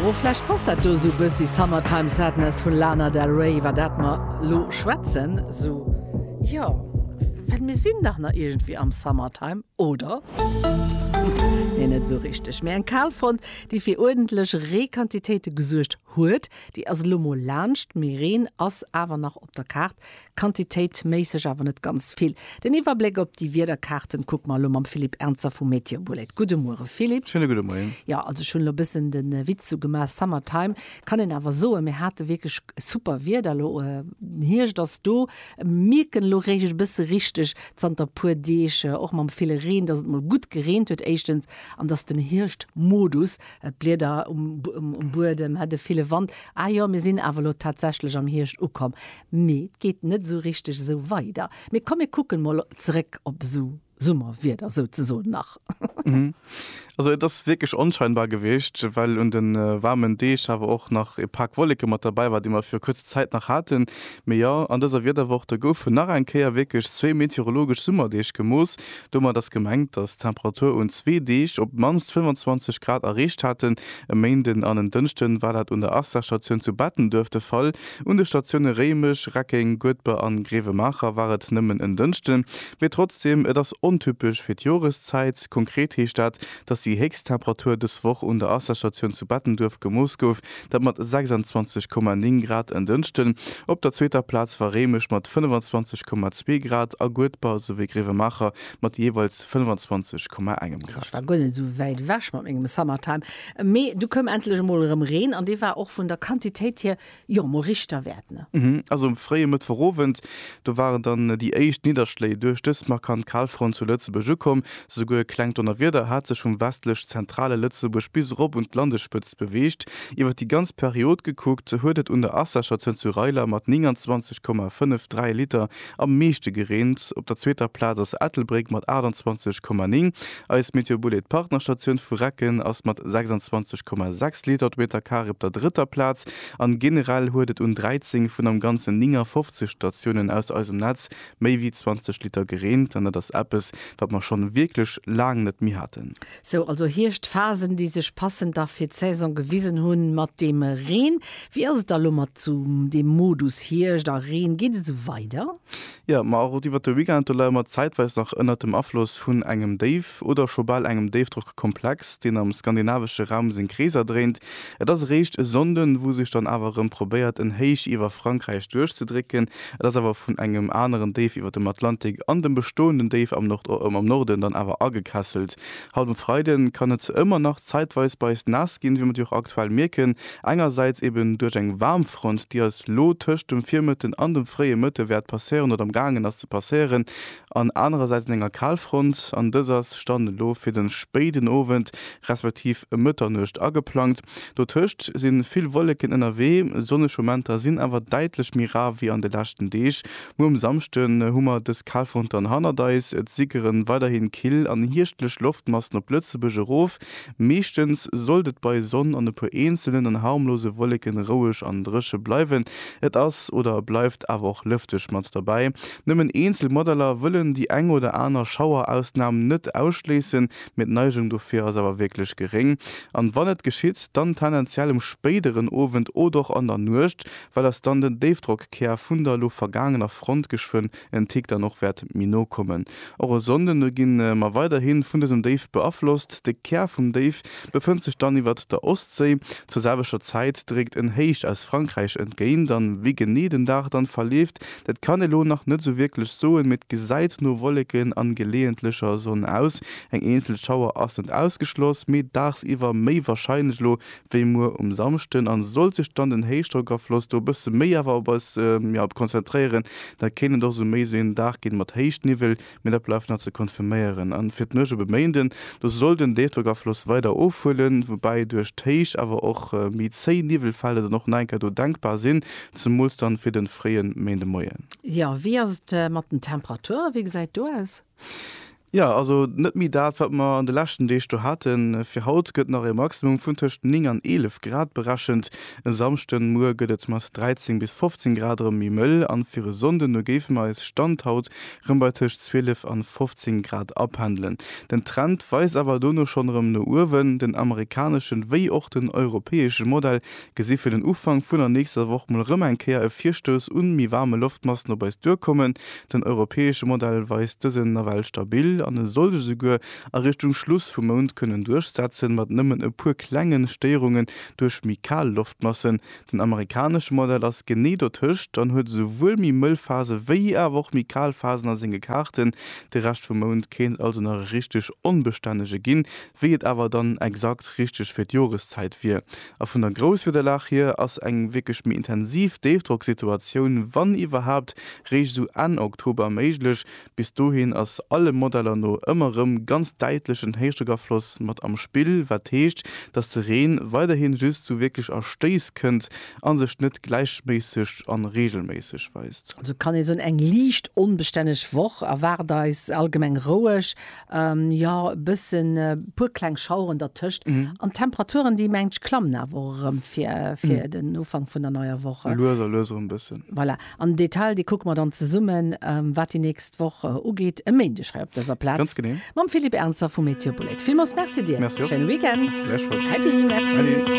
Ohh vläicht passt dat do sou bëssi Summertime Sadness vun Lana Del Rey iwwer dat mer lo schwätzen sou jo well mir sinn dach nach iergendwéi am Summertime oder? Nee net sou richteg mee eng Kalfront déi fir uerdentlech Reequantitéite gesuergt huet déi ass elo mol laanscht mee Reen ass awer nach op der Kaart Quantitéitméisseg awer net ganz vill. Den Iwwerbléck op déi Wiederkaarten kucke mer elo mam Philippe Ernzer vu Meteobullet. Gudde Muere Philippe. Schéine gudde Moien. Jo, also ech hunn elo e bëssen de Witz do gemaach, Summer time kann een awer soen. Mir hate wierklech super Wieder elo, den Hierscht ass do. Mierken elo réischt e bësse richteg zanter e puer Deeg, och mam ville Reen, dass et mol gutt gereent huet éischtens an dass den Hierschtmodus, d'Blieder um Buedem, de ville Wand, ah jo, mir sinn awer elo tatsächlech am Hierscht ukomm. Mee et geet net esou richteg esou weider. Mee komm mir kucken mol zeréck op esou Summerwieder souzesoen nach. Also et ass wierklech onscheinbar gewiescht, well un de waarmen Deeg awer och nach e Pak Wolleke mat derbäi war, déi mer fir kuerz Zäit nach haten. Mee jo, an dëser Wiederwoch, do goufen nach eng Kéier wierklech zwee meteorologesch Summerdeeg gemooss. Domat ass gemengt, datt d'Temperature un zwee Deeg op d'mannst 25 Grad erreecht haten. E Méinden an en Dënschden war dat un der Arcelor-Statioun zu Bettenduerf de Fall. Un de Statioune Réimech, Reckeng, Goedber an Grevenmacher war et nëmmen en Dënschden, mee trotzdeem, et ass ontypesch fir d'Joreszäit. Konkret heescht dat, dass déi héchst Temperatur dës Woch un der Wasserstatioun zu Bettenduerf gemooss gouf, dat mat 26,9 Grad en Dënschden. Op der zweeter Plaz war Réimech mat 25,2 Grad a Goedber souwéi Grevenmacher mat jeeweils 25,1 Grad. Ech war guer net esou wäit ewech mat mengem Summertime. Mee du koum endlech emol erëm Reen an dee war och vun der Quantitéit hier, jo, emol richtewäert, ne? Also um fréie Mëttwochowend, do waren dann déi éischt Nidderschléi duerch dës markant Kalfront zu Lëtzebuerg ukomm. Souguer e klengt Donnerwieder hat sech vum westlech-zentrale Lëtzebuerg bis erop un d'Landespëtzt beweegt. Iwwer déi ganz Period gekuckt huet et un der Assacher Zënzureiler mat 29,53 Liter Am meeschte gereent. Op der zweeter Plaz ass Ettelbréck mat 28,9. Eis Meteobullet Partnerstatioun vu Recken ass mat 26,6 Liter de Meter Carré op der drëtter Plaz an generell huet et un 13 vun am ganzen 59 Statiounen aus eisem Netz méi wéi 20 Liter gereent an dat ass eppes wat mer schonn wierklech laang net méi haten. Sou also Hierschtphasen, déi sech passend da fir d'Saison gewisen hunn mat dem Reen. Wéi ass et da lo mat sou dem Modus Hierscht a Reen? Geet et sou weider? Jo, ma och iwwert de Weekend do leie mer zäitweis nach ënnert dem Afloss vun engem Déif oder scho bal engem Déifdrockkomplex, deen am skandinavesche Raum seng Kreeser dréint. Et ass eréischt e Sonnden, wou sech dann awer erëm probéiert en Héich iwwer Frankräich duerchzedrécken. Et ass awer vun engem aneren Déif iwwer dem Atlantik an dem bestoenden Déif am Norden dann awer agekesselt. Haut um Freide kann et ëmmer nach zäitweis bei eis naass ginn, wéi mer déi och aktuell mierken. Engersäits eben duerch eng Waarmfront, déi eis lo tëscht dem Virmëtten an dem fréie Mëtte wäert passéieren oder am gaangen ass ze passéieren. an anerersäits un enger Kalfront, an dës ass Stand elo fir de spéiden Owend respektiv ëm Mëtternuecht ageplangt. Dotëscht si vill Wolleken ënnerwee, sonneg Momenter sinn awer däitlech méi rar wéi an de leschten Deeg. Muer um Samschde hu mer dës Kalfront dann hannert eis, et sickere weiderhi kill an hierschtlech Loftmassen op Lëtzebuerg erof. Meeschtens sollt et bei Sonn an e puer eenzelen an harmlose Wolleken roueg an dréche bleiwen. Et ass oder bleift awer och lëfteg mat derbäi. Nëmmen eenzel Modeller wëllen déi eng oder aner Schauerausnam net ausschléissen, mee d'Neigung dofir ass awer wierklech geréng. An wann et geschitt, dann tendenziell um spéideren Owend od och an der Nuecht, well ass dann den Déifdrockkär vun der lo vergaangener Front geschwënn en Tick dann och wäert méi no kommen. Och e Sonnden do gi mer weiderhi vun dësem Déif beaflosst. De Kär vum Déif befënnt sech dann iwwert der Ostséi. Zur selwechter Zäit dréckt en Héich aus Frankräich entgéint an wéi genee den Dag dann verleeft, dat kann ee lo nach net sou wierklech soen, mee et gesäit no Wolleken an geleeëntlecher Sonn aus. Eng eenzel Schauer ass net ausgeschloss, mee dagsiwwer méi warscheinlech lo wéi muer um Samschden an sollt sech dann den Héichdrockafloss do e bësse méi awer op eis konzentréieren, da kéint et och esou méi esou een Dag ginn mat Héichtniwwel, mee dat bleift nach ze konfirméieren. An fir d'Nuecht op e Méinden, do soll den Déifdrockafloss weider ofhuelen, woubäi duerch d'Héicht awer och méi zéi Niwwelfelder dann och nach eng Kéier do denkbar sinn, zemools dann fir den fréien Méindemoien. Jo, wéi ass et mat den Temperature, wéi gesäit et do aus? Jo, also net méi dat, wat mer an de leschten Deeg do haten. Fir haut gëtt nach e Maximum vun tëscht 9 an 11 Grad berechent. E Samschde muer gëtt et mat 13 bis 15 Grad erëm méi mëll an fir e Sonnden no géife mer eis, Stand haut, rëm bei tëscht 12 an 15 Grad apendelen. Den Trend weist awer dono schonn erëm no uewen. Den amerikaneschen wéi och den europäesche Modell Gesi fir den Ufank vun der nächster Woch mol erëm eng Kéier e Virstouss un méi waarme Loftmassen op eis duerkommen. Den europäesche Modell weist dësen nawell stabil an e soll sech esouguer a Richtung Schluss vum Mount kënnen duerchsetzen, mat nëmmen e puer klengen Stéierungen duerch méi kal Loftmassen. Den amerikanesche Modell ass genee dotëscht an huet esouwuel méi mëll Phase wéi awer och méi kal Phasen a senge Kaarten. De Rescht vum Mount kéint also nach e richteg onbestännege ginn. Wéi et awer dann exakt richteg fir d'Joreszäit wier, A vun der Grousswiederlag hier ass eng wierklech méi intensiv Déifdrocksituatioun, wann iwwerhaapt, réischt esou Enn Oktober méiglech. Bis dohin ass alle Modeller no ëmmer rëm ganz däitlech en Héichdrockafloss mat am Spill, wat heescht, dass de Reen weiderhi just zu wierklech a Stéiss kënnt a sech net gläichméisseg an reegelméisseg weist. Also kann ee soen, eng liicht onbestänneg Woch erwaart eis, allgemeng roueg Jo, e bëssen, e puer kleng Schaueren dertëscht. An d'Temperaturen, déi mengen ech klammen awer och erëm fir, fir den Ufank vun der neier Woch. Lues a lues erëm bëssen. Voilà. An den Detail, dee kucke mer dann zesummen, wat déi nächst Woch ugeet, e Méindeg hei op dëser Plaz. Ganz genee. Mam Philippe Ernzer vu Météo Boulette. Villmools Merci dir. Merci och. Schéine Weekend. Merci gläichfalls. Äddi, merci. Äddi.